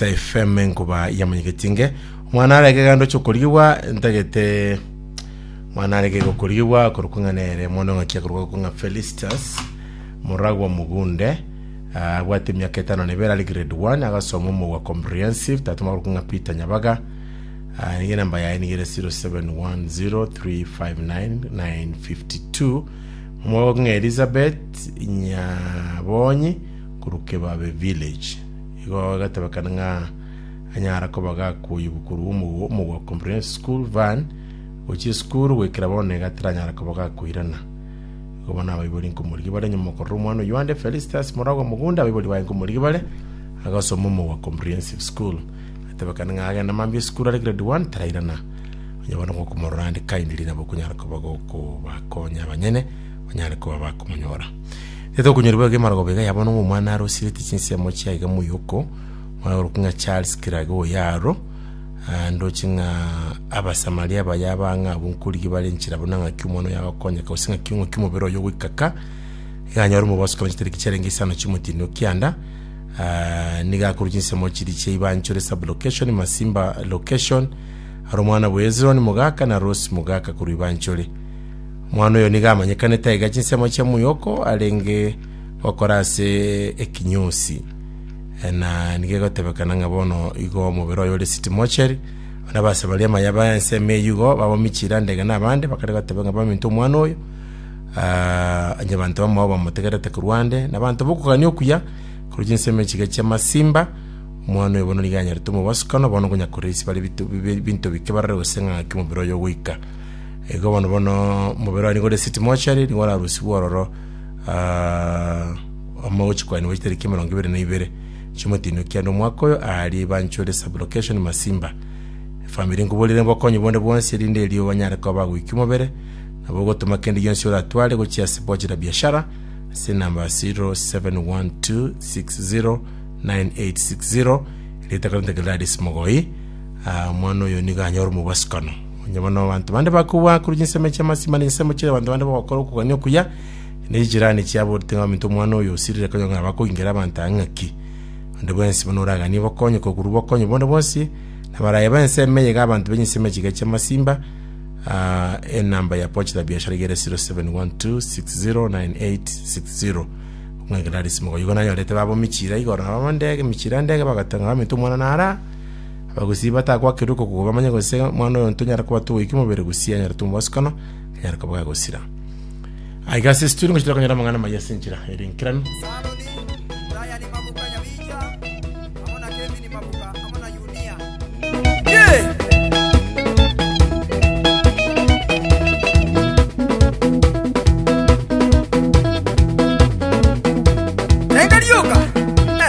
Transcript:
Taifem enkuba yamanyegetie inge. Omwana are ekeganda oche okorigigwa, ntagete mwana are kege okorigigwa akorokwa ng'a nere mwana ong'aki akorokwa korokwa ng'a Felistus moragwa mogunde Ah, abwate emiaka etano na ibere ari grade 1 agasoma omogwa comprehensive tata makorokwa ng'a Peter Nyabaga Ah, niga enamba yaye niga ere 0710359952 omogwa ng'a Elizabeth Nyabonyi korokwa Ebabe village Igo egatebekana ng'a anyara koba gakoyigwa korwa omogwa omogwa comprehensive school van gochia esukuru goikera bono iga taranyara koba gakoirana igo bono abaibori nkomorigia bare nyuma okorora omwana oyio ande Felicitas moragwa mogunda abaibori baye nkomorigia bare agasoma omogwa comprehensive school atebekana ng'a agenda mambia esukuru are grade one tarairana onye bono gokomorora ande kindly nabo okonyara koba gokobakonya abanyene banyare koba bakomonyora Gete okonyorigwa iga emarogobwo iga yabwo nobwo omwana arosiretie chinsemo chiaye iga moyoko, muna orokwe ng'a Charles Kirage o Yaro, ah, ndoche ng'a Abasamaria aba yaba ang'e abwo nkorigia bare enchera buna ng'aki omwana oyo agokonyeka gose ng'aki ng'aki omobere oye ogoika ka, iga anyore omobaso korwa chitariki chiarenge isano chiomotieneno kianda, ah, nigo akorwa chinsemo chiria chia Ibanchuri sub-location, Masimba location, are omwana bwa Hezron mogaka na Rosi mogaka korwa Ibanchuri. Omwana oyo nigo amanyekanete aiga chinsemo chia moyoko arenge gokora ase ekinyosi, na nigo egotebekana ng'a bono igo omobere oye ore city mortuary. Bono abasabaria maya ba ensemo eyio igo bamomichire ande igana abande bakare goteba ng'a baminto omwana oyo, onye abanto bamao bamotegerete korwa ande, na abanto bokogania okuya korwa chinsemo echi iga chia masimba, omwana oyo bono nigo anyarete omobosokano, bono ngonya korisia bare ebinto bike barore gose ng'a naki omobere oye ogoika. Igo bono bono omobere one nigore city mochari nigo orarusigwe ororo omo gochikwanigwa chitariki emerongo ibere na ibere chiomotenio kiane omwaka oyo aari banchure sublocation masimba efamiri nkoborere bokonyi bonde bwonsi erinde erio banyare koba bagoikia omobere nabo ogotoma kende gionsi oratware gochia ase pochi la biashara ase enamba 0712609860 rietaka rintake Gladys Mogoi omwana oyo nigo anyore omobwasukano Onye bono abanto bande bakobua korwa chinsemo chi'amasiimani, chinsemo chi'abanto bande bagokora okogania okuya, ne chijirani chiabo orite ng'a ominto omwana oyo osirire konya ng'a nabakoingira abanto aa ng'aki. Onde bwensi buna oraganie bokonyi kokorwa bokonyi bonde bwonsi, na baraye b'ense ime iga abanto be chinsemo chiga chi'amasiimba, aa enamba ya pochi la biashara iga ere 0712609860. Ng'a Gladys Mogoyo igo nanyorete babomi chiira igoro nabo ande emichiira ande iga bagoteba ng'a ominto omwana nara aa. Abagusii batagwakerwe kokuuga bamanye gose omwana oyo ntonyare koba togoika omobere gusii anyare tomobasukana, anyare koba agosira. Aiga ase ase turi ngochira konyora amang'ana amaya ase enchera y'erengeranu. Enga rioka. Eh.